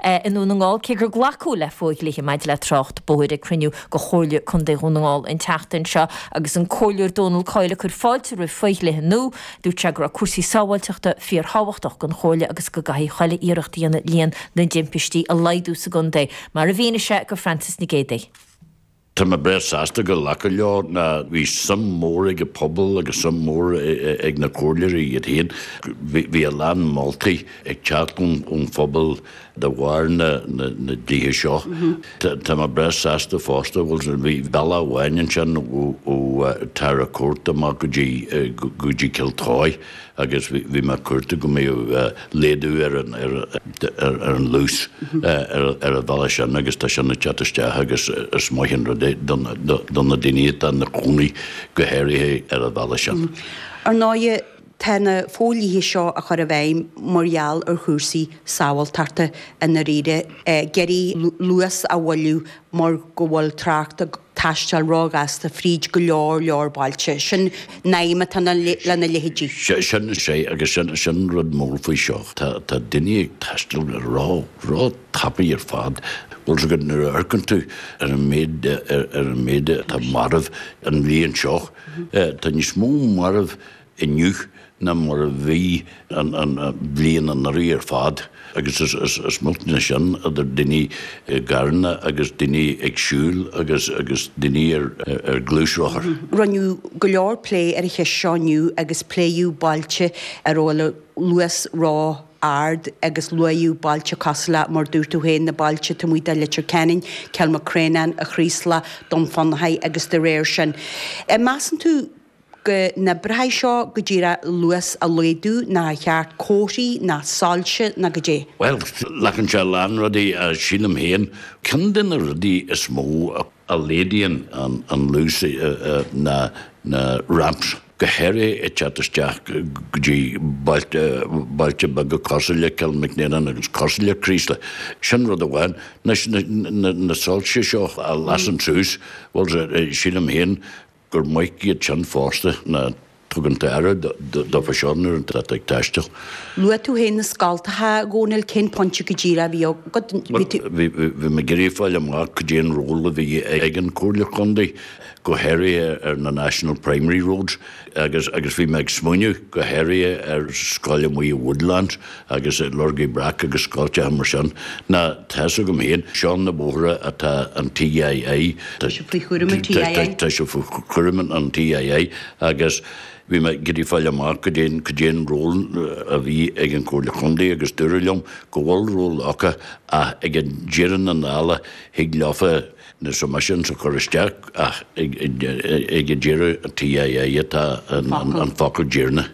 i nDún na nGall, gur glacadh le fo-dhlithe maidir le trácht bóthair ag cruinniú de Chomhairle Contae Dhún na nGall an tseachtain seo agus an Comhairleoir Donal Coyle ag cur fáilte roimh fho-dhlithe nua. Dúirt sé go raibh cúrsaí sábháilteachta fíor thábhachtach don Chomhairle agus go gcaithfidh achan iarracht a dhéanamh líon na dtimpistí a laghdú sa gcontae, mar a mhínigh sé do Frances Nic Géadaigh. Tá mé breá sásta gur glacadh leo nó bhí suim mór ag an pobal agus suim mór ag na comhairleoirí iad féin. Bhí a lán moltaí ag teacht ón phobal de bharr na dlíthe seo. Tá mé breá sásta fosta go bhfuil, bhí bealach amháin ansin ó Tara Court amach go dtí Cill Tuaidh. agus bhí mé ag cuartú go mbeadh laghdú ar an luas ar an bhealach sin agus tá sin ag teacht isteach agus is maith an rud é do na daoine atá ina chónaí go háirithe ar an bhealach sin. Ar ndóighe tá na fodhlíthe seo á chur i bhfeidhm mar gheall ar chúrsaí sábháilteachta i ndáiríre. ag iarraidh luas a mhoilliú mar go bhfuil trácht taisteal róghasta fríd go leor leor bailte. Sin an aidhm atá lena leithéidí. Sin is ea agus sin an rud mór faoi seo. Tá daoine ag taisteal ró tapaidh ar fad. Bhuel, is gurb nuair a amharcann tú ar an méid ar an méid atá marbh an bhliain seo, tá níos mó marbh inniu ná mar a bhí an bhliain anuraidh ar fad agus is millte ná sin idir daoine i gcarranna agus daoine ag siúl agus daoine ar ghluaisrothair. Rinneadh go leor plé ar an cheist seo inniu agus pléadh bailte a bhfuil an luas ró ard agus luadh bailte cosúil le, mar a dúirt tú féin, na bailte taobh amuigh de Leitir Ceanainn, Cill Mhic Réanáin, an Chraoslaigh, Dún Fionnachaidh agus de réir sin. Measann tú. go n-oibreoidh seo go dtig an luas a laghdú nó an ceart comharthaí nó soilse nó goidé. Bhuel, glacann sé a lán rudaí, sílim féin. Ceann de na rudaí is mó a laghdaíonn an luas ná na ramps go háirithe ag teacht isteach go dtí bailte beaga cosúil le Cill Mhic Réanáin agus cosúil le Craoslach. Sin rud amháin. Anois, na soilse seo a lasann suas, bhuel, sílim féin gur maith iad sin fosta nó tugann tú aire dófa sin nuair atá tú ag taisteal. Luaigh tú féin na scoltacha, a Dhónaill, cén pointe go díreach a bhí agat? Bhí mé ag iarraidh fáil amach cad é an ról a bhí ag an Chomhairle Chontae, go háirithe ar na National Primary Roads agus bhí mé ag smaoineamh go háirithe ar scoil amuigh i Woodlands. agus i lorg na mbreac agus scoltacha mar sin, ná tá's agam féin, seo na bóithre atá an TII, tá sé faoi chúram an TII, tá sé faoi chúram an TII agus bhí mé ag iarraidh fáil amach goidé an, goidé an ról a bhí ag an Comhairle Chontae agus dúradh liom go bhfuil ról acu ach ag deireadh na dála thig leofa, submissions a chur isteach ach ag an deireadh, TII atá an focal deireanach.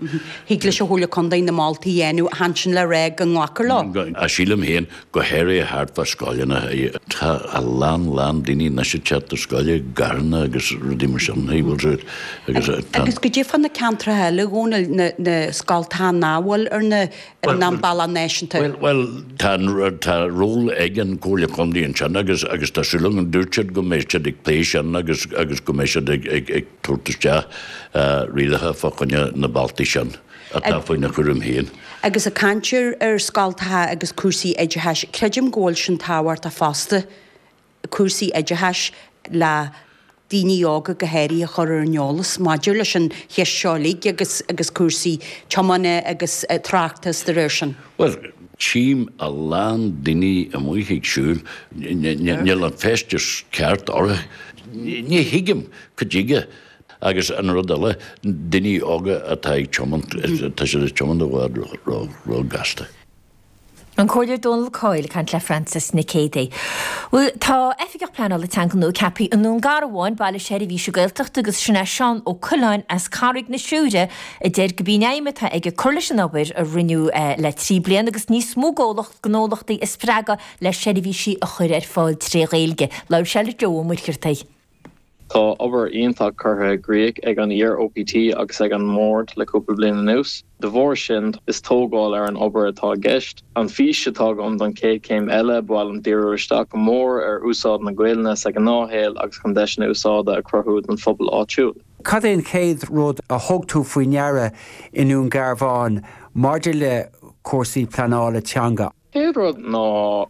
Thig leis an Chomhairle Contae na moltaí a dhéanamh chan sin le rá go nglacfar leo. Ach sílim féin, go háirithe thart fá scoileanna, tá a lán lán daoine anois ag teacht ar scoil i gcarranna agus rudaí mar sin, agus tá. Agus goidé fá na ceantracha eile, Dhónaill, na scoltacha nach bhfuil ar na. ar an bhealach náisiúnta. Bhuel, tá ról ag an gComhairle Contae ansin agus tá súil agam, dúirt siad go mbeidh siad ag plé sin agus go mbeidh siad ag tabhairt isteach rialacha fá choinne na bealtaí sin atá faoina gcúram féin. Agus ag caint ar scoltacha agus cúrsaí oideachais, creidim go bhfuil sin tábhachtach fosta. cúrsaí oideachais le daoine óga go háirithe a chur ar an eolas maidir leis an cheist seo uilig agus cúrsaí tiomána agus tráchta agus dá réir sin. Bhuel, tchím a lán daoine amuigh ag siúl, níl an feisteas ceart orthu, ní thuigim cad chuige agus an rud eile daoine óga atá ag tiomáint, tá siad ag tiomáint i bhfad ró ghasta. An Comhairleoir Dónal Coyle ag caint le Frances Nic Géadaigh. Bhuel, tá Oifigeach Pleanála Teanga nua ceaptha i nDún Garbhán, baile seirbhíse Gaeltachta agus sin é Seán Ó Coileáin as Carraig na Siúire a deir gurb í an aidhm atá aige cur leis an obair a rinneadh le trí bliana agus níos mó comhlacht, gnólachtaí a spreagadh le seirbhísí a chur ar fáil tré Ghaeilge. Labhair sé le Joe Ó Muircheartaigh. Tá obair iontach curtha i gcrích ag an iar-OPT agus ag an mBord le cúpla bliain anuas. De bharr sin, is tógáil ar an obair atá i gceist. An fhís atá agam don chéad chéim eile, ba mhaith liom díriú isteach go mór ar úsáid na Gaelainne sa ghnáthshaol agus chun deiseanna úsáide a chruthú don phobal áitiúil. Cad é an chéad rud a thug tú faoi ndeara i nDún Garbhán maidir le cúrsaí pleanála teanga? Chéad rud ná go.